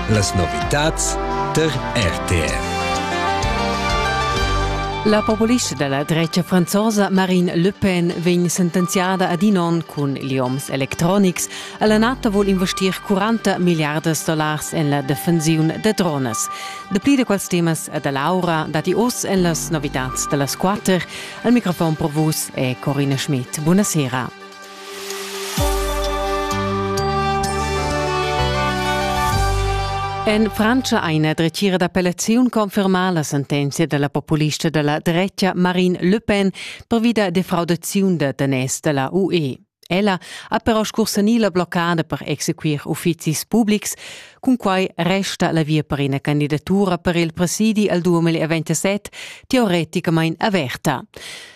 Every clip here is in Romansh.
Las novitads tar RTR. La populista della drecha franzosa Marine Le Pen vegn sentenziada ad in on cun gli homes electronics. La NATO vuol investir 40 miliardas dollars en la defensiun de drones. Dapli de quels temas da Laura dati oss en las novitats dellas quater. Al microfon pro vus è Corina Schmidt. Buonasera. En Frantscha ha ina dretgira d'appellaziun confermà la sentenzia della populista della drecha Marine Le Pen pervi da defraudaziun da daners della UE. Ella ha però scursanì la bloccada per exequir uffizis publics. Cun quai resta la via per ina candidatura per il presidi al 2027 teoreticamain averta.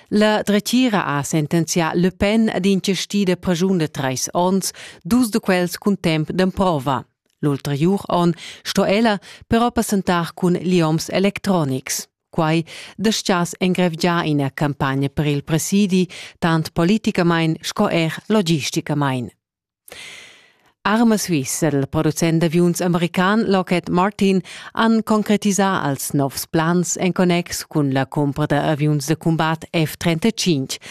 La dretgira ha sentenzià Le Pen ad inchestir da pragiun da trais ons, dus da quels cun temp d'emprova. L'ulteriur on sto ella però passentar cun lioms electronics. Quai destias engrevgiar ina campagna per il presidi, tant politicamain sco er logisticamain. Arma Suisse dal producent d'aviuns american Lockheed Martin han concretisà als novs plans en connex cun la cumpra da aviuns da cumbat F-35.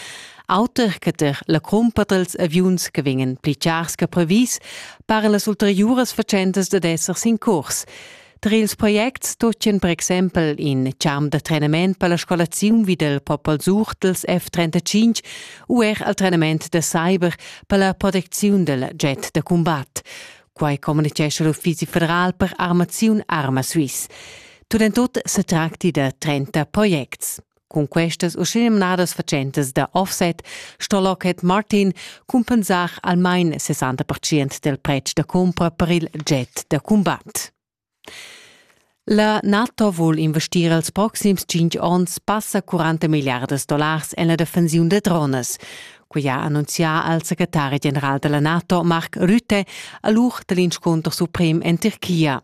Auter che ter la cumpa dals aviuns che vegnan pli chars che previs, paran las ulteriuras fatschentas dad esser sin curs. Tra ils projects tutgan per exempel in champ da trenament per la scolaziun vi dal Popol Surtels F35 u er al trenament da cyber per la protecziun dal jet da cumbat. Quai communitgescha l'Uffizi federal per armaziun Arma Swiss. Tut en tut se tracti da 30 projects. Cun questas uschenumnadas fatschentas da offset sto Lockheed Martin cumpensar almain 60% del pretsch da cumpra per il jet da combat. La NATO vul investir els proxims 5 onns passa 40 milliardas dollars en la defensiun da drones. quia ha annunzià al secretari general della NATO Mark Rutte a l'uch dell'inscunter suprem en Turchia.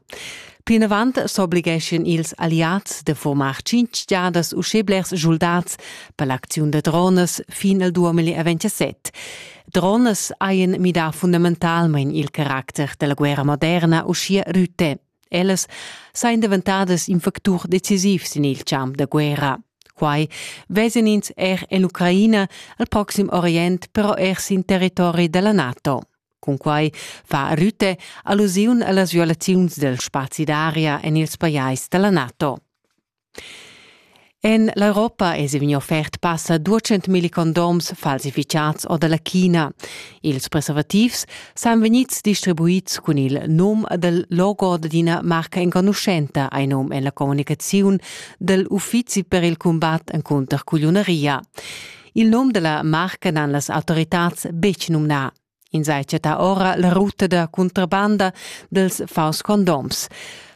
Plinavant s'obligeschien ils alliats de formar cinc giadas uschè blers soldats per l'acziun de drones fin al 2027. Drones haien midà fundamentalmein il caracter della guerra moderna, uschia Rutte. Ellas sajan daventadas in factur decisiv sin il champ da guerra. Quai vesan ins er en l'Ucraina, al Proxim Orient, però er sin territori da la NATO. Cunquai fa Rütte allusiun a las violaziuns dal spazi d'aria en ils pajais da la NATO. En l'Europa èsi vegnì offert passa duecentmilli condoms falsificads or da la China. Ils preservativs san vegnids distribuids cun il num dal logo d'ina marca enconuschenta, hai num en la communicaziun dal uffizi per il cumbat encunter cugliunaria. Il num da la marca n'han las autoritads betg numnà. Ins ha chattà ora la ruta da cuntrabanda dels faus-condoms.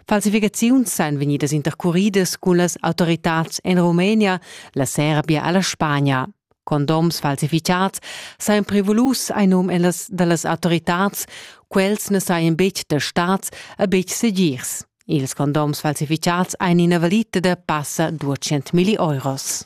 Falsificaziuns ein vegnidas intercuridas cun las autoritads en Rumenia, la Serbia e la Spagna. Condoms falsificats sajan prevolus ein num ellas dallas autoritads, quels ne saien betg da staats e betg segirs. Ils condoms falsificats ein ina valita da passa 200 milli euros.